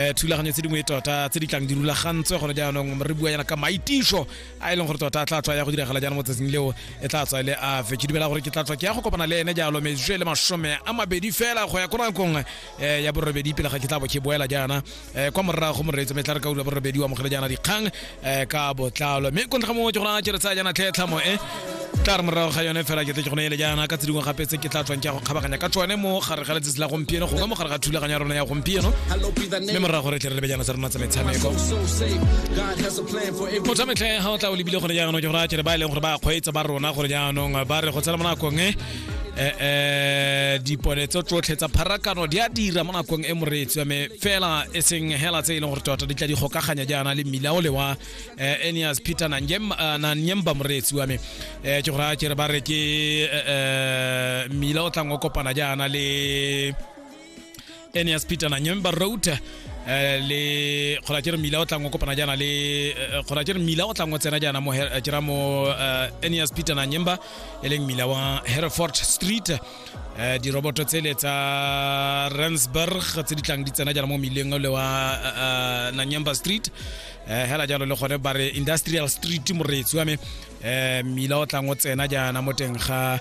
eh, thulaganyo tse dingwe tota tse di tlang di rulagantswe gone jaanong re bua yana ka maitiso a e leng gore tota a tla tswa ya go diragala jaana mo tsatsing leo e tla tswa e le a fe ke dumela gore ke tla tswa ke ya go kopana le ene jalo metswe le masome a mabedi fela go ya ko nakong eh, ya borobedi pele ga ke tla bo ke boela jaana eh, kwa morago moreetso me tla re ka ura borobedi wa mogele jaana dikgang eh ka botlalo mme kontra mongwe ke gona ke re tsaya jana tlhetlhamo e tla re morago ga yone fela ke tle ke gone ele jaana ka tse dingwe gape tse ke tla tswang ke ya go kgabaganya ka tsone mo gare ga letsatsi la gompieno go ka mo gare ga thulaganyo ya rona ya gompieno mme morago re tle re lebe jana tsa rona tsa metshameko motho a metlhe ga o tla o lebile gore jaanong ke gore a kere ba e leng gore ba kgweetsa ba rona gore jaanong ba re go tsena mo nakong e eh, eh dipone tso tsotlhe tsa pharakano di a dira mo nakong e moreetsi wa me fela e seng hela tse e leng gore tota di tla di gokaganya jaana le mmila o le wa eh, enias peter nanyemba eh, moreetsi wa me um ke gore a kere ba re ke mmila o tlang o kopana jaana le ene ya sepita na nyemba road eh, le kgona ke re mmila o tlang o kopana jaana le eh, kgona ke re mmila o tlang o tsena jaana mo Her- ke ra mo eh, ene ya sepita na nyemba e leng mmila wa hereford street Eh, diroboto tsele tsa ransburg tse di tlang di tsena jaana mo mmileng ole wa eh, eh, nanyemba street Eh, hela jalo le gone ba re industrial street moreetsi wa me eh, mmila o tlang o tsena jaana mo teng ga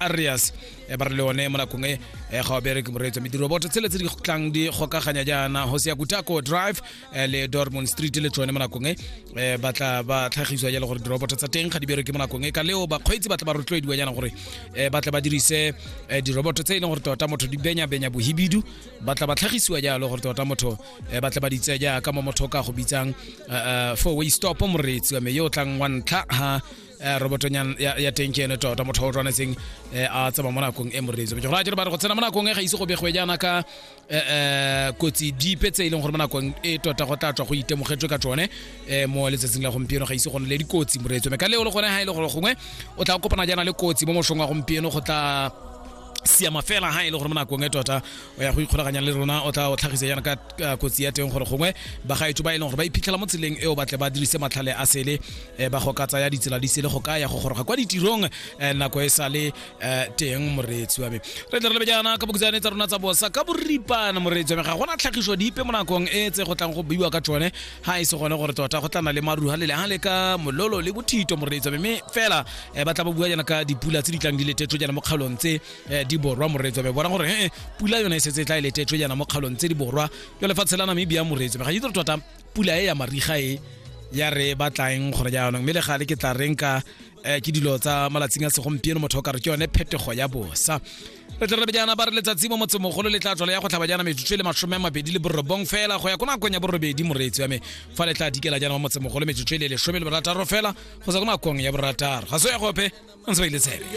arias e ba re le one mo nakong e e ga o bereke moreetso mediroboto tsele tse di tlang di gokaganya jaana hosea kutako drive eh, le dormond street le tsone mo nakong e eh, ba tla ba tlhagiswa jalo gore diroboto tsa teng ga di bereke mo nakong e ka leo bakgweetsi ba tla ba rotloediwa jaana gore eh, ba tla ba dirise eh, diroboto tse e leng gore tota motho di benya-benya bohibidu ba tla ba tlhagisiwa jalo gore tota motho eh, ba tla ba ditse jaaka mo motho o ka go bitsang eh, eh, four way stop moreetsi wa me yo o tlang wa ntlha ha eh, robotonyana ya teng ke ene tota motho o tshwanetseng eh, a tsaba mo nakong e moreetsi go ra jalo ba re go tsena mo nakong e ga ise go begwe jaana ka eh, kotsi dipe tse e leng gore mo nakong e tota go tla tswa go itemogetswe ka tsone mo letsatsing la gompieno ga ise go ne le dikotsi moreetsi mme ka leo le gone ga e le gore gongwe o tla kopana jaana le kotsi mo mosong wa gompieno go tla siama fela ha e le gore mo nakong e tota o ya go ikgolaganya le rona o tla o tlhagise yana ka kotsi ya teng gore gongwe bagaetso ba e leng gore ba iphitlhela mo tseleng e o batle ba dirise matlhale a sele e ba go ka tsaya ditsela di sele go ka ya go goroga kwa ditirong um nako e sa le um teng moreetsi wa me re tle re lebe jaana ka bokutsane tsa rona tsa bosa ka boripana moreetsi wa me ga gona tlhagiso dipe mo nakong e tse go tlang go buiwa ka tsone ga e se gone gore tota go tlana le maruha le lehang le ka mololo le bothito moreetsi wa me mme fela um ba tla bo bua jaana ka dipula tse di tlang di letetso jaana mo kgaolong tse um di borwa moreetsi wa me bona gore e pula yone e setse e tla e letetso jaana mo kgaolong tse di borwa yo lefatshe la namibia moreetsi wa me ga itse tota pula e ya mariga e ya re batlaeng gore jaanong mme le gale ke tla reng ka um ke dilo tsa malatsing a segompieno motho o ka re ke yone phetogo ya bosa re tla rebe jaana ba re letsatsi mo motsemogolo le tla tswalo ya go tlhaba jaana metsotso le masome a mabedi le borobong fela go ya ko nakong ya borobedi moreetsi wa me fa le tla dikela jaana mo motsemogolo metsotso le lesome le borataro fela go sa ko nakong ya borataro ga se ya gope ntse ba ile tshebe